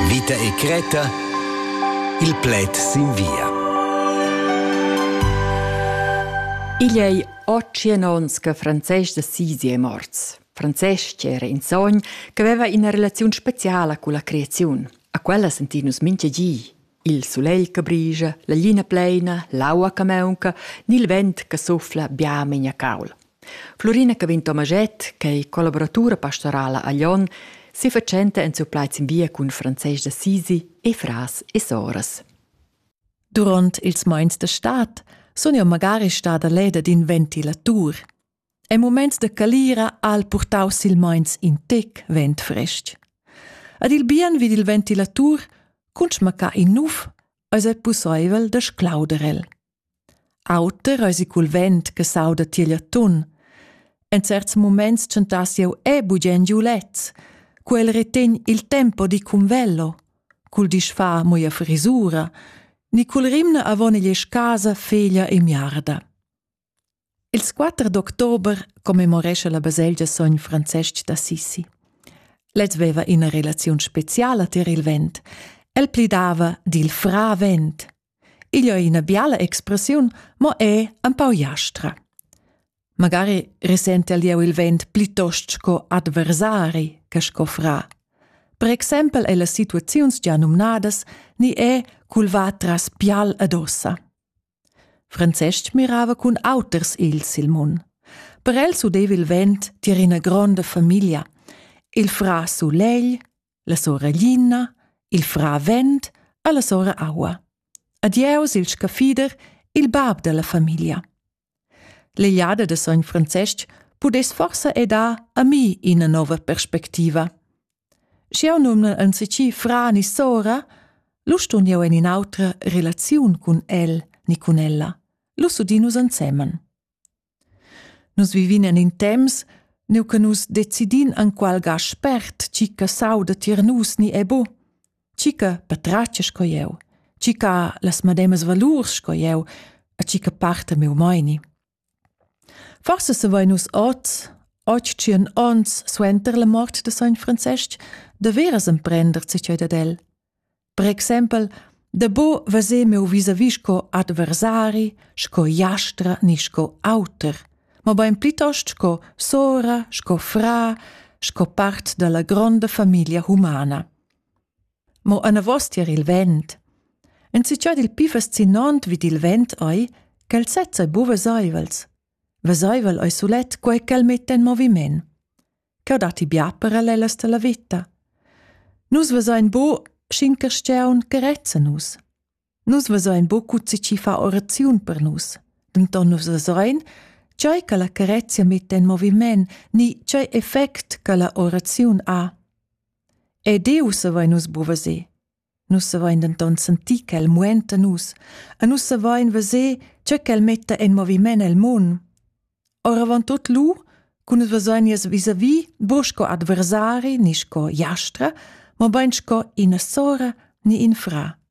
Vita e cretta il pled sin via. Igl ei otschien onns che Francesc de Sisi è morts. Francesc era in sogn che aveva ina relazione speciala con la creazione. A quella sentin nus minchia gi. Il sulegl che brigia, la glina pleina, l'aua che maunca, ni il vent che suffla bia megna caul. Florina Cavin Tomaget, che è collaboratura pastorala a Lyon, si facenta en suo plaiz in via cun Francesc d'Assisi e fras e soras. Durant ils mais de stad sun jeu magari stada leda d'in ventilatur. En muments da calira ha el purtau silmeins in tec vent frestg. Ad il bien vid il ventilatur, cun schmaccar in nuf, eis ei pusseivel da sclauder el. Auter eisi cul vent che sauda tiegl atun. En certs muments tschentass jeu e bugen giu lez, cu el retegn il tempo di cun velo, cul disfa moia frisura, ni cul rimna avon igl casa feglia e miarda. Ils quatter d'october commemorescha la baselgia sogn Francestg d'Assisi. Lez veva ina relaziun speciala tier il vent. El plidava dil fra vent. Igl è ina biala expressiun, mo è un pau jastra. Magari risente el jeu il vent plitost sco adversari che sco fra. Per exempel è las situaziuns già numnadas ni è culva tras pial ad ossa. Francestg mirava cun auters ils il mun. Per el s'udeva il vent tier ina gronda famiglia. Il fra sulegl, la sora Lina, il fra vent e la sora aua. Adieus il scaffider, il bab della famiglia. L'egliada de sogn Francestg pudess forsa edar a mi ina nova perspectiva. Sch'jeu numnel enzatgi fra ni sora, lu stun jeu en in'autra relaziun cun el ni cun ella. Lu s'udin nus ensemen. Nus vivin en in temps, neu che nus decidin enqual ga spert tgi che sauda tier nus ni è bu, tgi che patratga sco jeu, tgi che ha las medemas valurs sco jeu e tgi che parta miu meini. Forse savein nus oz, oggi tschien ons suenter la mort de sogn Francesc, daveras emprender tschei dad el. Per exempel, da bo veser meu vis-a-vis sco adversari, sco jastra ni sco auter, mobein plitost sco sora, sco fra, sco part dalla gronda famiglia humana. Mo anavos tier il vent. Enzatgei dil pli fascinont vid il vent ei ch'el sezza ei buca veseivels. Veseivel ei sulet quei ch'el metta en moviment. Cheu dat ti bia per el ellas dalla vita. Nus vesein bu sc'in carstgaun che rezza nus. Nus vesein buca tgi chi fa oraziun per nus, denton nus vesein, tgei che la carezia metta en moviment ni tgei effect che la oraziun ha. E Diu savein nus bu veser. Nus savein denton sentir ch'el muenta nus e nus savein veser tge ch'el metta en moviment el mund. Oravant tut lu, cu nus vesein nies vis-a-vis bu sco adversari ni sco jastra, mobein sco ina sora ni in fra.